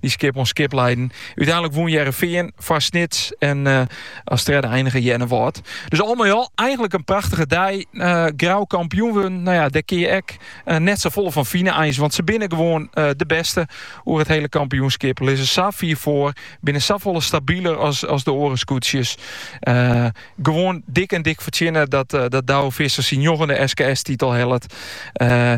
Dy skip oan skip leiden. Uteinlik wûn Hearrenfean foar Snits en uh, as tredde einige Earnewâld. Dus al mei al eigenlik in prachtige dei. Uh, Grou kampioen wurden, no ja, dêr kin je ek uh, net safolle fan fine eins. Want se binne gewoan uh, de bêste oer it hiele kampioenskip. Lizze sa fier foar, binne safolle stabiler as, as de oare skûtsjes. Uh, gewoan dik en dik fertsjinne dat, uh, dat Douwe Visser syn njoggende SKS-titel hellet. Uh,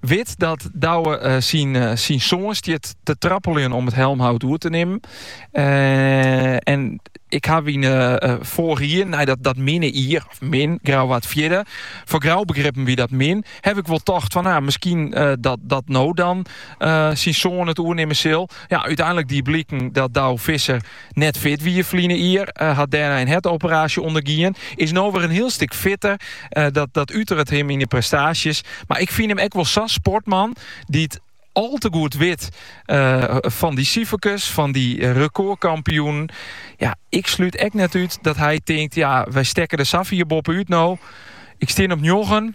Wit dat Douwe syn soan stiet te trappeljen om it helmhout oer te nimmen. En ik haw yn foarige jier, nei dat dat minne jier, of min, Grou waard fjirde, foar Grou begrippen wie dat min, haw ik wol tocht fan, no, miskien dat dat no dan syn soan it oernimmen sil. Ja, úteinlik die bliken dat Douwe Visser Net fit wie ferline jier, hat dêrnei in hertoperaasje ûndergien. Is no wer in hiel stik fitter. dat, dat uteret him yn de prestaasjes. Mar ik fyn him ek wol sa'n sportman dy't al te goed wit eh, fan dy siferkes, fan dy eh, rekordkampioenen. Ja, ik slút echt net út dat hy tinkt, ja, wy stekke der sa fier boppe út no. Ik stean op njoggen,